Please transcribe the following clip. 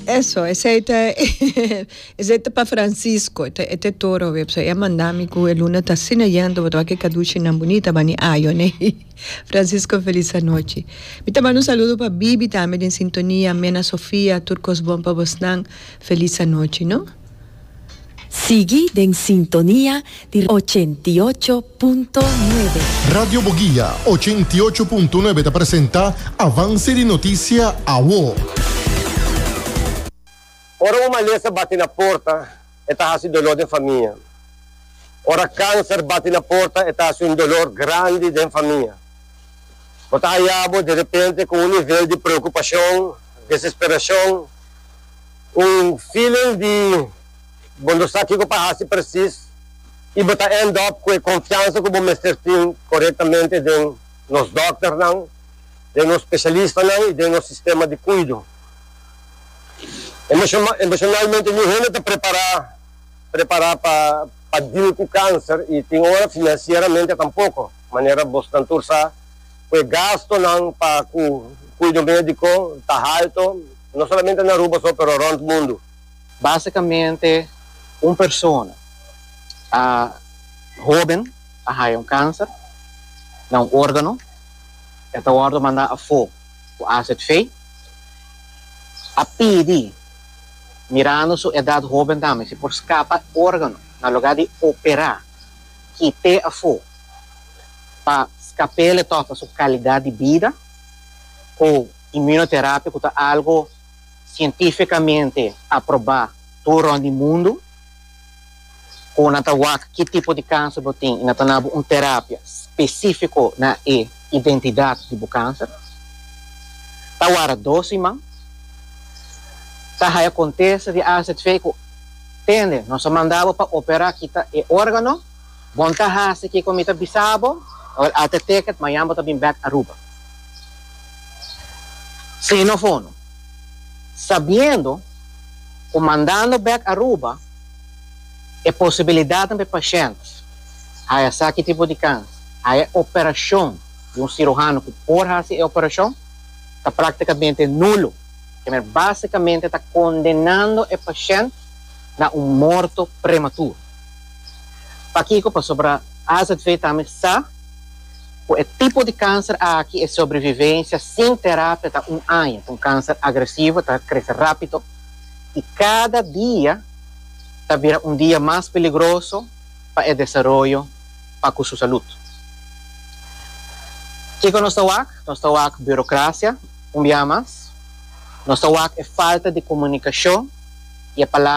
Eso, esey ta esey ta pa Francisco, e ta e ta e toro web, so e a manda mi cu e luna ta asina yendo, bo ta wak e caduchinan boni, ta bani ayo ne. Francisco feliz anochi. Mi ta manda un saludo pa Bibi tambe den sintonia, Mena Sofia, tur cos bon pa bosnan, feliz anochi no. Sigui den sintonia di ochenta i ocho punto nuebe. Radio Boguia ochenta i ocho punto nuebe ta presenta Avance di Noticia Awo. Ora un malesa bati na porta, e ta hasi dolor den famia. Ora kanser bati na porta, e ta hasi un dolor grandi den famia. Bo ta haya bo di repente ku un nivel di preokupashon, desesperashon. Un feeling di bo no sa kiko pa hasi presis y bo ta end up cu e confiansa cu bo mester tin corectamente den nos dokternan, den nos specialistanan y den nos sistema di cuido. Emocionalmente ni hende ta prepara prepara pa pa deal cu cancer y tin ora financieramente tampoco, manera bosnan tur sa cu e gastonan pa cu cuido medico ta halto. No solamente na Aruba so pero rond mundu. Basicamente un persona a hoben a haya un cancer na un organo e ta wordo manda afo cu acid fey. A pidi mirando su edad hoben tambe si por scapa e organo na lugar di opera kite afo pa scapele toca su calidad di bida cu. Imunoterapia ku ta algo sientifikamente aprobá tur rònt di mundu, ku nan ta wak ki tipo di kanser bo tin i nan ta duna bo un terapia spesífiko na e identidat di bo kanser. Ta wara dos siman. Ta haya kontesta di AZV ku tende nos a manda bo pa operá kita e órgano. Bon ta hasi kico mi ta bisa bo, or a te ticket mañan bo ta bin back Aruba. Sin of hono. Sabiendo cu mandando back Aruba e posibilidadnan pa e pashent haya esaki tipo di kans, haya e operacion di un ciruhano cu por hasi e operacion, ta practicamente nulo. Kemer basicamente ta condenando e pashent na un morto prematuro. Pakiko? Pasobra azv ta mi sa ku e tipo di kanser aki e sobrevivensia sin terapia ta un aña. Ta un kanser agresivo, ta krese rápido i kada dia ta bira un dia mas peligroso pa e desaroyo pa ku su salut. Kiko nos ta wak? Nos ta wak burokrasia un bia mas, nos ta wak e falta di komunikashon i e palabra.